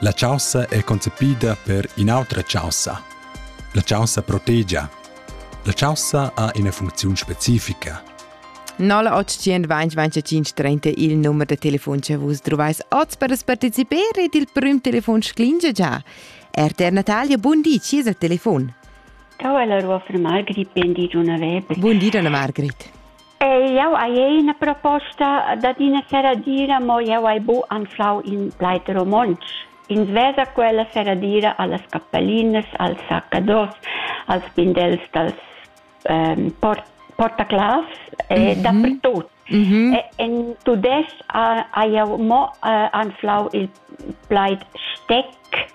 La chaussa è concepida per in'autra chaussa. La chaussa protegia. La chaussa ha ina funcziun specifica. 0800 2025 30 il numero de telefon che vus trovais oz per partecipare ed il prim telefon sclinge già. RTR Natalia, buon dì, ci è il telefon. Ciao Elaro, fra Margrit, buon dì Gianna Weber. Buon dì Gianna Margrit. Jau hai ina proposta dad ina serradira, mo jau hai bu anflau in plaid romontsch. Ins vesa quella serradira allas cappellinas, als saccados, als pindels dals ähm, port portaclavs e mm -hmm. dapertut. Mm -hmm. En tudestg ha, ha jau mo äh, anflau il plaid steck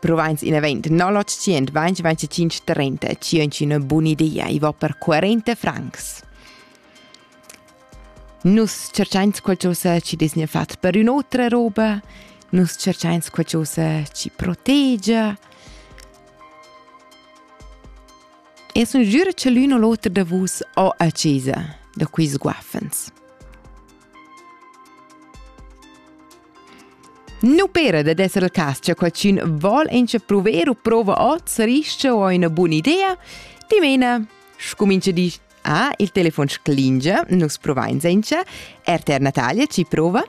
Provinz in event 0925 2025 5 Buona idea e va per 40 francs. Nus cercains qualcosa ci disnia fat per un'otra roba, nus cercains qualcosa ci protegia. E sun giura che l'un o l'otra da vus ho a chesa da quis guaffens. Nu pera dad esser il cas cha qualchün vol inchapruver u prouva hoz ris-cha o üna bun'idea? Dimena, scumincha dir Ah, il telefon sclingia, nus provain senza. RTR Natalia ci prova?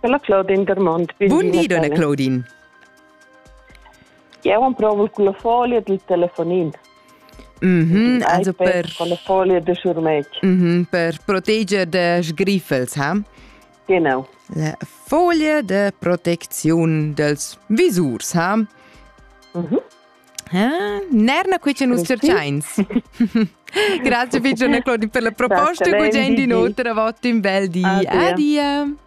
Dalla Claudine Dermont. Buondì, donna Claudine. Jeu emprovel culla folia dil telefonin. Mm -hmm, also per con la folia de schurmetg. Mm -hmm, per proteger de sgriffels, ha? Genau. La folia de proteziun dels visurs, ha? Mhm. Mm Ah, Nerna, qui ce nus cerciains. Grazie, Figgione Claudie, per la proposta e bugiain di nuotra votto in bel di. Adia. Adia.